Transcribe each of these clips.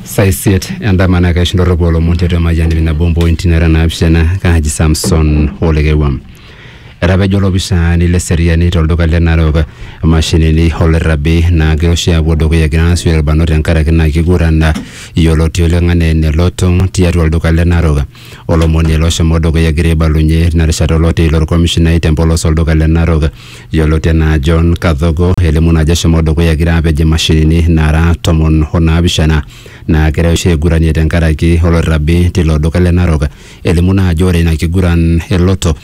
saa isiet endama naa kaisho ndorropu olomon tiatua emayiani nabo mpointi nara naapishana kaaji samson olekewua etapejo olopisani le seriani tolduka le narok imashinini olrrabi naa kiroshi aapuo dukuya egira aasio irbanot tenkaraki naa kiguran yioloti oleng anaa ene lotong tiatua olduka le narok olomoni ele oshomo dukuya egira aibalunye ina rishata oloti ilo orkomishinai tempolos olduka le Narok yioloti enaa John Kadhogo elimu naa ajo eshomo dukuya egira apej imashinini naara tomon onaapishana naagirai oshi aiguranie tenkaraki oloirobi tilo duka le Narok elimu naa ajo ore ina kiguran eloto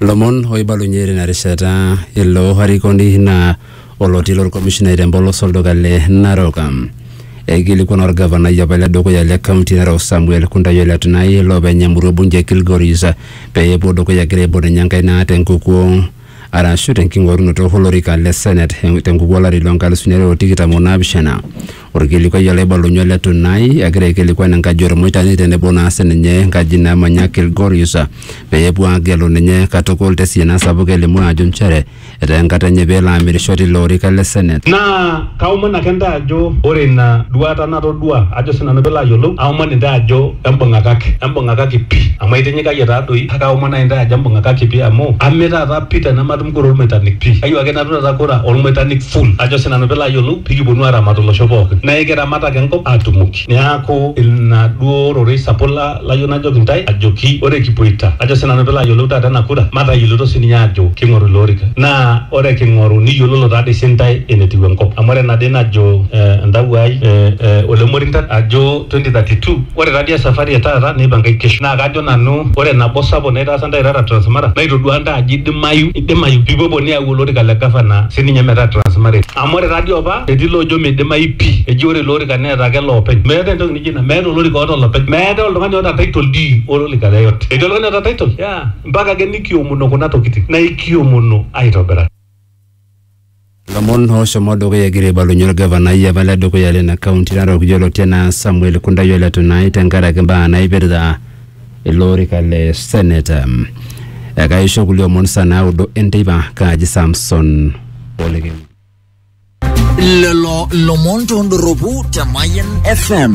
Lomon oibalunye tina rishata ilo arikoni naa oloti lolkomishinai te mpolos olduka le Narok. Eikilikuana olgavanai apa le dukuya le kaunti e Narok Samuel Kuntai Ole Tunai loopeny emurua e bunge e Kilgoris pee epuo dukuya egira aibung ninye enkaina te nkukuo arashu te nking'orunoto olorika le Senate te nkukuo olari loo nkalisuni are o tikitam o naapishana. Olkilikuai olaibalunye ole Tunai egira aikilikuan enkaji o Lmoitani tenebo naa sininye enkaji namanya Kilgoris pee epuo aagelu ninye katukul te siana sapuk elimu aajo nchere etaa enkata enye pee elo amirisho tilo orika le Senate. Naa kaomon ake intae ajo ore ina duaata natodua ajo sii nanu pee ilo ayiolou aomon intae ajo embung'akaki, embung'akaki pii amu aitinyikayie taa doi kake aomon naaji intae ajo embung'akaki pii amu ame taata pii tenematumoki Kore olmoitanik pii. Kayieu ake nanu taata kura olmoitanik full ajo sii nanu pilo ayiolou pikiponu aramat olosho pookin. Naa ekiramat ake enkop atumoki. Neaku ina duo rorei sapuk layieu najoki intae ajoki ore kipuoita ajo sii nanu pilo ayiolou taata ena kura matayioloito sii ninye ajo king'oru ilo orika. Naa ore king'oru niyiololo taadoi sii intae enetiu enkop. Amu ore ena dii najo entawuo ai Ole Morintat ajo. 2032 ore taadii esafari etaata neipangae kesho naa kajo nanu ore nabo sapuk naitaasa ntae irara Transmara naitoduaa ntae ajo idimayu idimayu pipuopuo niyau olorika le gavana sininye metaa Transmara etii amu ore taadii opa etii loojo meidimayu pii eji ore ilo orika neeta ake loopeny meetae entoki nijo ina meeta olorika oota olopeny meetae oltung'ani oota title dii olorika yeyote etii oltung'ani oota title? yeah mpaka ake nikiomono kuna tokitin naa ikiomono aitobiraki. Lomon ooshomo dukuya egira aibalunye olgavanai apa le dukuya lina kaunti narok yioloti anaa Samuel Kundai o Letunai tenkaraki mbaa naipirta ilo orika le seneta. Ekaisho kulie omon saa naudo enteipa kaaji Samson Olekeni. Lelo lomon tondoropu te Mayan FM.